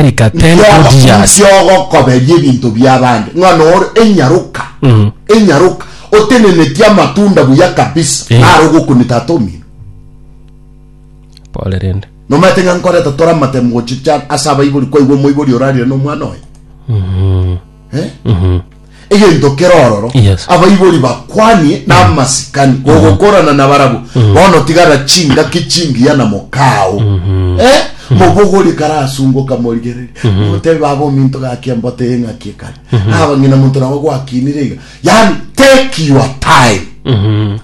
America, Ken Nki Odias. ogosusia ogokoberia ebinto bi'abande? Ng'a noro enyaroka, enyaroka, otenenetie amatunda buya kabisa, Eh. naro ogokuni tata omino. Pole rende. Nomaete ng'a nkoreta tore amatemo gochicha ase abaibori, kwaigwa omoibori orarire nomwana oye. Eh? Mhm. egento kero ororo Yes. abaibori bakwanie namasikani gogokorana na barabwo bono tigara chingaki chingiya na mokao Eh? mobogori karasungoka morigereria motebe baba ominto gaki embote eng'aki ekare abang'ina monto nabo gwakinire iga yaani take your time Mhm.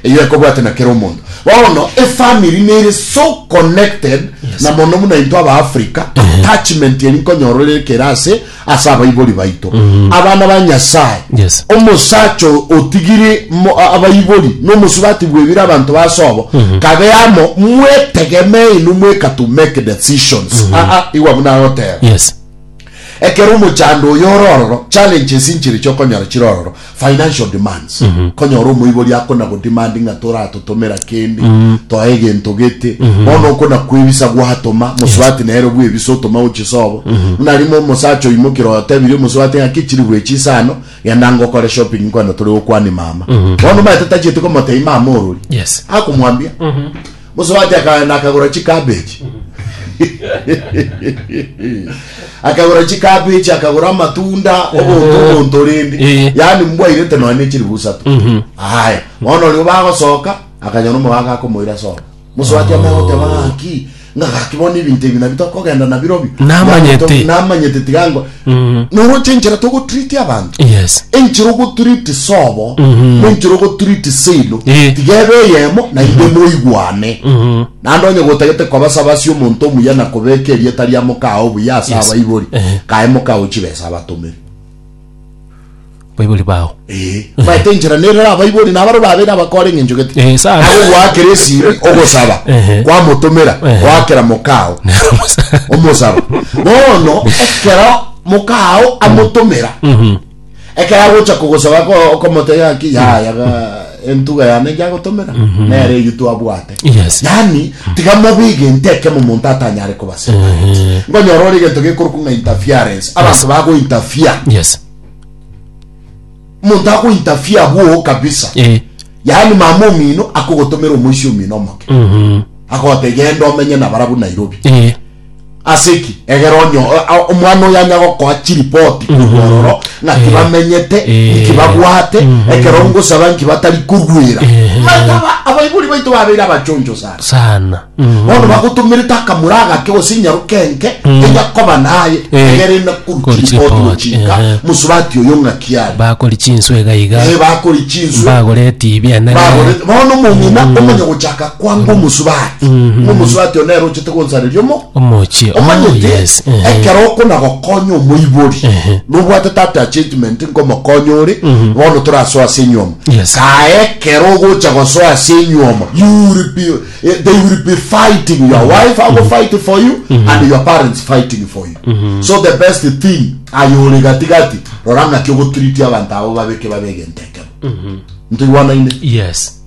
eyo ekobwate na kera omonto bono efamily nere so connected Yes. na mono buna into aba africa attachment eri nkonyora ore kera ase ase abaibori baito abana ba nyasaye Yes. omosacha o- otigire mo- a- abaibori nomosubati bwebire abanto basobo kabe amo mwetegemee inu mweka to make decisions Ah, ah, igwa buna agoteba Yes. Ekero omochando oyo ore ororo, challenges inchire chi'okonyora chire ororo, financial demands. Konyora omoibori akona-godemandi ng'a toratotomera kende, toa egento gete. Bono okonakwebisa gwatoma, mosubati nere bwebisa otoma gochia sobo. Buna rimo omosacha oimokire oyotebirie omosubati ng'a ki chiri bwechi inse ano, genda ngokore shopping nkwene tore gokwania mama. Bono omanyete tachieti komotebia mama orori. Yes. Akomwambia. Mosubati akagenda akagora chikabechi, akagora chikabechi, akagora amatunda, obonto obonto rende, Eh. yaani mbwairete nonya ne chiribu isato. Aya, bono orio bagosoka, akanyora omogaka akomoira soka. Mosubati amanya goteba ng'aki, ng'a gaki bono ebinto ebi nabio tokogenda nabirobio. Namanyete. Namanyete tiga ngo- noroche enchera togotriti abanto yes enchera ogotriti sobo nenchera ogotriti seino Eh. tigebe eyemo naende moigwane naende onye gotagete koba sabasi omonto omuya na kobeka erieta ria mokao obuya ase abaibori kae mokao chibesa abatomeri Baibori bao. Eh, maete enchera nerera abaibori na abaro babe nabakore eng'encho gete. Eh, sa- Nabo gwakera esimi ogosaba, Ehe. kwamotomera, Ehe. gwakera mokao omosaba. Bono ekero mokao amotomera, ekero agocha kogosaba ko- okomotebia ng'aki yaya ga- entuga yane njagotomera nere eyio twabwate Yes. yani tiga mobe egento ekemo omonto atanyare kobasa Ehe. ngonyora ore egento gekorokwa ng'a interference abanto bago interfere Yes. omonto ago interfere abwogo kabisa Eh. yani mama omino akogotomera omoisia omino omoke Mhm. agote genda omenye nabarabu nairobi Eh. Ase ki? Egera onyo omwana oyo anya gokoa chiripoti korwa mm-hmm. ororo, ng'aki eh. bamenyete, eh. nki babwate, mm-hmm. ekero ngosaba nki batari korwera. Eh. Maitaba abaibori baito babeire abachoncho sana sana, mm-hmm. bono bagotomerete akamura agake gose inyaruka enke mm. enya koba naye egere ina korwa chiripoti gochika mosubati oyo ng'aki are bakori chinswe iga iga bakori chinswe bagore etibi enene bono omong'ina mm. omanya gochaka kwanga omosubati ng'a omosubati oo nere ochete gonsareria omo Omochie. Oh, omanyete yes. Ehe. ekero okona gokonya omoibori Ehe. nobwatete attachment nkomokonya ore bono torasoa ase enyuomo Yes. kae ekero ogocha gosoa ase enyuomo you will be, eh, they will be fighting your wife ago fight for you and your parents fighting for you so the best thing ayo ore gatigati rora ng'aki ogotreat abanto abo babeke babe egento ekemo ntoigwanaine Yes.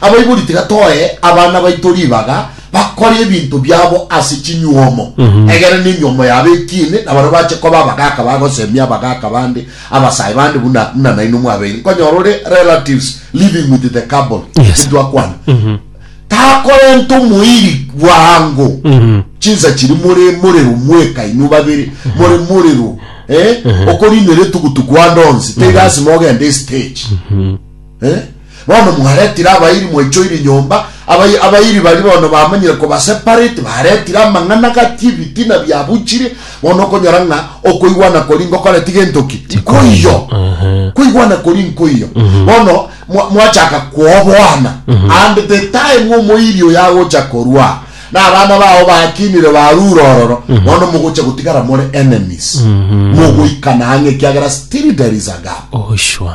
Abaibori tiga toe abana baito ribaga bakore ebinto biabo ase chinyuomo, egera nenyuomo yabo ekiine, na baria bache koba abagaaka bagosemia abagaaka bande, abasae bande buna buna nainwe mwabeire. Nkonyora ore relatives living with the couple, Yes. intwe akwana. Takorenta omoiri bwango. Chinsa chiri more morero mweka inwe babere, more morero. Eh? Okorinera etugutugu ande onsi, teiga asime ogende estage. Ee, bono mwaretire abairi mwaichoire nyomba, abai abairi baria bono bamanyire kobaseparate, baretire amang'ana gati, ebitina biabuchire, bono okonyora ng'a okoigwana koria ngokoreti gento ki? Nkoiyo. Ehe. Koigwana koria nkoiyo. Bono mwa- mwachaka kwoboana. And the time omoiri oyo agocha korwa, na abana bao bakinire barure ororo, bono mogocha gotigara more enemies. Mogoikana ang'e ekiagera still there is a gap. Oh, sure.